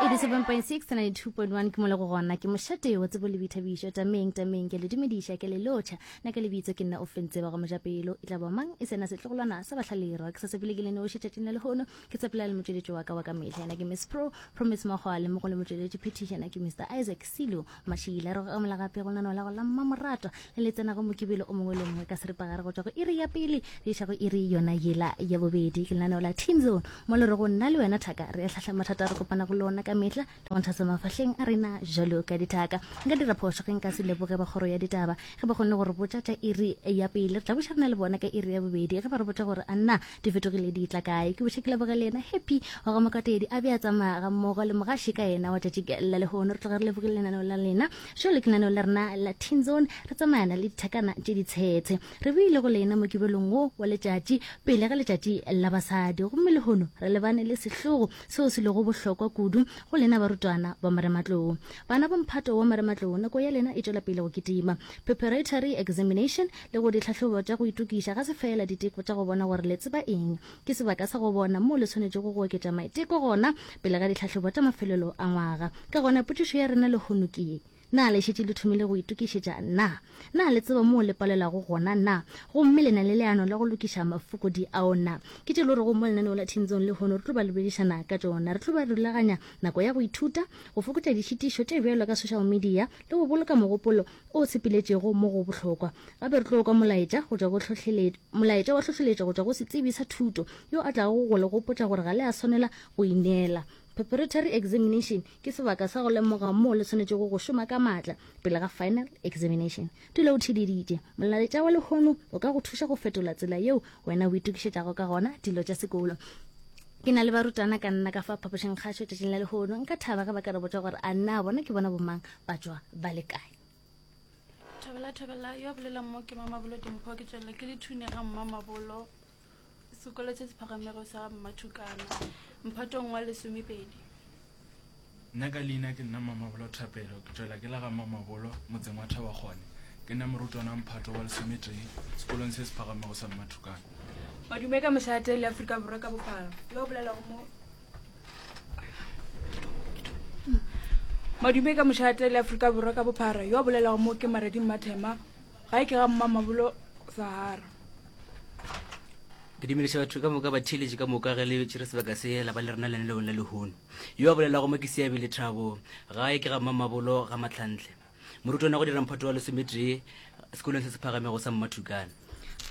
87.692.1 ke mole go gona ke mošate wa tsebo le boithabišo tameng tameng ke le dumediša ke le lotšha na ke lebitso ke nna o fentseba go mojapelo e tla ba mang e sena setlogolwana sa bahlalirwa ke sa sepele ke le noši tšatšing la lehono ke tsepela le motšweletši wa ka wa ka mehla yena ke miss pro promise makgwale mo go le motšweletši phethišana ke mr isaac silo Mašila, re go amola gape go lenaneo la go la Mmamoratwa le le tsenago Mokibelo o mongwe le o mongwe ka seripagare go tšwa go iri ya pele go iša go iri yona yela ya bobedi. Ke lenaneo la Teen Zone mo le rego nna le wena Thaka re ahlahla mathata a re kopanago le ona ka mehla le go nthasa mafahleng a rena bjalo ka dithaka. Nka dira phošo ge nka se leboge ba kgoro ya ditaba ge ba kgonne go re botša tša iri ya pele. Re tla buša rena le bona ka iri ya bobedi ge ba re botša gore a na di fetogile di tla kae ke boša ke leboge le yena happy wa go mokatedi a be a tsamaya ga mmogo le mogaše ka yena wa tšatši la lehono re tloga re lebogile lenaneo la lena jo le ke lenaneo la rena la teen zone re tsamayana le dithakana tše di tshetshe re boile go lena mokibelong wo wa letšatši pele ga letšatši la basadi gomme lehono re lebane le sehlogo seo se lego bohlokwa kudu go lena barutwana ba marematlou bana ba mphato wa marematlou nako ya lena e tšwela pele go kitima preparatory examination Le go ditlhahlobo tša go itokiša ga se feela diteko tša go bona gore le tseba eng. Ke sebaka sa go bona moo le swanetšego go oketša maiteko gona pele ga ditlhahlobo tša mafelelo a ngwaga. Ka gona potšišo ya rena lehono ke ye, Na le šetše le thomile go itokišetša? Na? Na le tseba moo le palelwago gona? Na? Gomme le na le leano la go lokiša mafokodi ao? Na? Ke tše e le gorego mo lenaneo la Thintsong lehono re tlo ba lebedišana ka tšona. Re tlo ba rulaganya nako ya go ithuta, go fokotša ditšhitišo tše bjalo ka social media le go boloka mogopolo o sepiletšego mo go bohlokwa. Gape re tlo kwa molaetša go tšwa go hlohlelet, molaetša wa hlohleletšo go tšwa go setsebi sa thuto yo a tlago go le gopotša gore ga le a swanela go ineela. Preparatory examination ke sebaka sa go lemoga moo le swanetšego go šoma ka maatla pele ga final examination. Dula o theeleditše. Molaetša wa lehono o ka go thuša go fetola tsela yeo wena o itokišetšago ka gona dilo tša sekolo. Ke na le barutwana ka nna ka fa phapošingkgašo tšatšing la lehono. Nka thaba ge ba ka re botša gore a na bona ke bona bomang ba tšwa ba le kae thobela thobela yo bolelang mo ke mamabolo dimpho ke tswelela ke lethune ga mmamabolo sekolo se se phagamego sa mmathukana mphatong wa lesomepedi nna ka leina ke nna mmamabolo thapelo ke tswelela ke la ga mmamabolo motseng wa thaba gone ke nna morutwana mphato wa lesometee sekolong se se phagamego sa mmathukana madume ka mošate le aforika borwa ka bophara yo bolelago mo madume ka mošate le aforika borwa ka bophara yo a bolelago mo ke mareding mathema ga e ke ga mma mabolo sahara ke dumediša batho ka moka batheeletše ka moka ge le tšere sebaka se la ba le rena lene leong la lehono yo a bolelago mo ke seabele thabo ga e ke ga mma mabolo ga matlhantle Morutwana go dira mphato wa lesometee sekolong se se phagamego sa Mmathukana.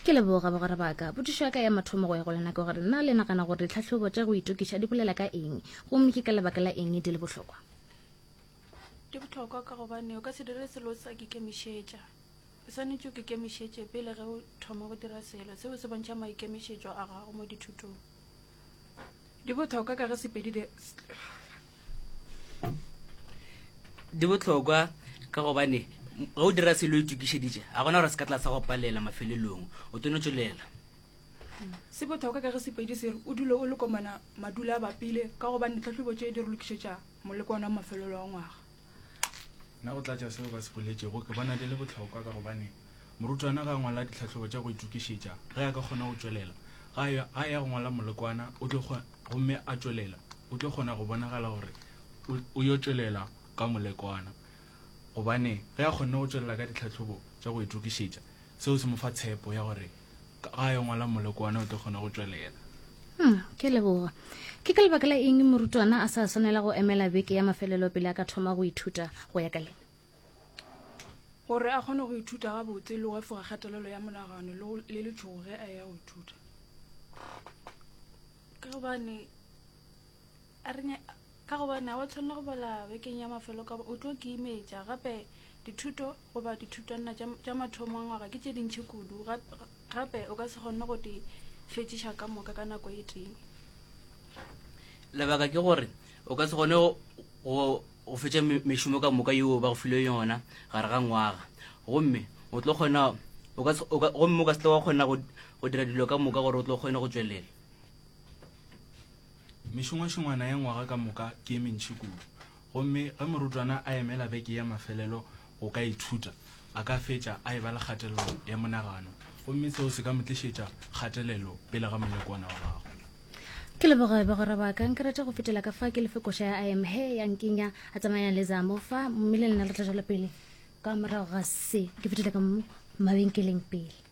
Ke leboga bagwera ba ka. Potšišo ya ka ya mathomo go ya go lena ke gore na le nagana gore ditlhahlobo tša go itokiša di bolela ka eng, gomme ke ka lebaka la eng di le bohlokwa? Di bohlokwa ka gobane o ka se dire selo o sa kikemišetša. O swanetše o kikemišetše pele ge o thoma go dira selo. Seo se bontšha maikemišetšo a gago mo dithutong. di botlhokwa ka ge sepedi di botlhokwa ka gobane ge o dira selo itokišeditše ga gona gore se ka tla sa go palela mafelelong o tono tswelela se botlhokwa ka ge sepedi sere o dule o lekomana madula a bapile ka gobane ditlhatlhobo tše di re lokišetša moleko ona mafelelo wa ngwaga Nna go tlatša seo ba se boletšego ke bona di le bohlokwa ka gobane morutwana ga a ngwala ditlhahlobo tša go itokišetša ge a ka kgona go tšwelela ga a ya- ga a ya go ngwala molekwana o tlo kgo- gomme a tšwelela o tlo kgona go bonagala gore o- o yo tšwelela ka molekwana gobane ge a kgonne go tšwelela ka ditlhahlobo tša go itokišetša seo se mo fa tshepo ya gore Ga yo ngwala molekwane o tlo kgona go tšwelela. Hmm, ke leboga. Ke ka lebaka la eng morutwana a sa swanela go emela beke ya mafelelo pele a ka thoma go ithuta go ya ka lena? Gore a kgone go ithuta gabotse le go efoga kgatelelo ya monagano le letšhogo ge a ya go ithuta. Ka gobane a re nya- ka gobane ga wa tshwanela go bala bekeng ya mafelo ka ba o tlo ke imetša gape dithuto goba dithutwanna tša tša mathomo a ngwaga ke tše dintšhi kudu ga- ga- gape o ka se kgonne go di fetšiša ka moka ka nako e tee lebaka ke gore o ka se gone go- go go fetša me- mešomo ka moka yeo ba go filwe yona gare ga ngwaga gomme o tlo kgona o ka se- o ka- gomme o ka se tla wa kgona go go dira dilo ka moka gore o tlo kgone go tšwelela Mešongwašongwana ya ngwaga ka moka ke e mentši kudu, gomme ge morutwana a emela beke ya mafelelo go ka ithuta, a ka fetša a eba le kgatelelo ya monagano gomme seo se ka mo tlišetša kgatelelo pele ga molekwana wa gagwe. Ke leboge bagwera ba ka. Nka rata go fetela ka fa ke le fe koša ya I am Her ya Nkinya Atsamayang le Zamo fa, mme le lena re tla tšwela pele. ka morago ga se ke fetile ka mabenkeleng pele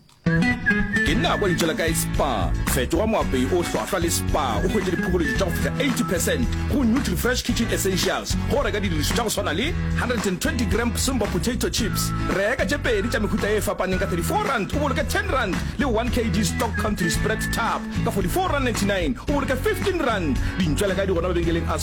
ke nna kwa lentšela kae spa fetoga moapei o hlwahlwa le spa o hwetse diphokoledi tša go fihla 80 percent go nutri fresh kitchen essentials go reka didiriso tša go swana le 120 gram simba potato chips reka tše pedi tša mehuta e fapaneng ka 34 rand o boloke 10 rand le 1 kg stock country spread tap ka 44 rand 99 o boloke 15 rand dintšwela kae di gona mabenkeleng a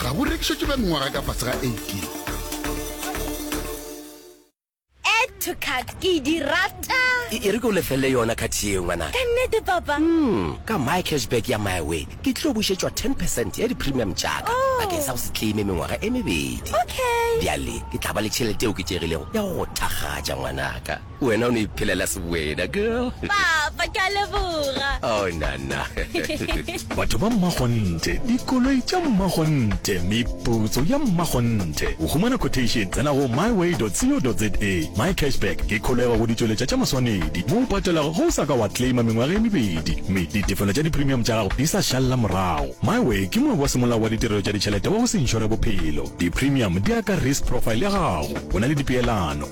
ga bo rekišetšwe ba mengwaga e ka fase ga 18 Add to cart ke e di rata E e re ke o lefelele yona khathi yeo ngwanaka. ka nnete papa Mm, ka my cashback ya my way ke tlo bušetšwa 10 percent ya di-premium tšaka Oh. bakeng sa go se claime mengwaga e mebedi okay bjale ke tla ba le tšhelete e oketšegilego ya go go thakgatša ngwanaka Wena o no iphelela seboeda, girl. Papa, ke a leboga. Oh, nana. Batho ba mmakgonthe, dikoloi tša mmakgonthe, meputso ya mmakgonthe. Go humana quotation, tsena go myway.co.za. Mycashback ke kholego go ditšweletša tša maswanedi mo o patelago ge o sa ka wa claima mengwaga e mebedi mme ditefelo tša dipremium tša gago di sa šalela morago. Myway ke moabi wa semolao wa ditirelo tša ditšhelete wa go se inšore bophelo. Dipremium di ya ka risk profile ya gago. O na le dipeelano.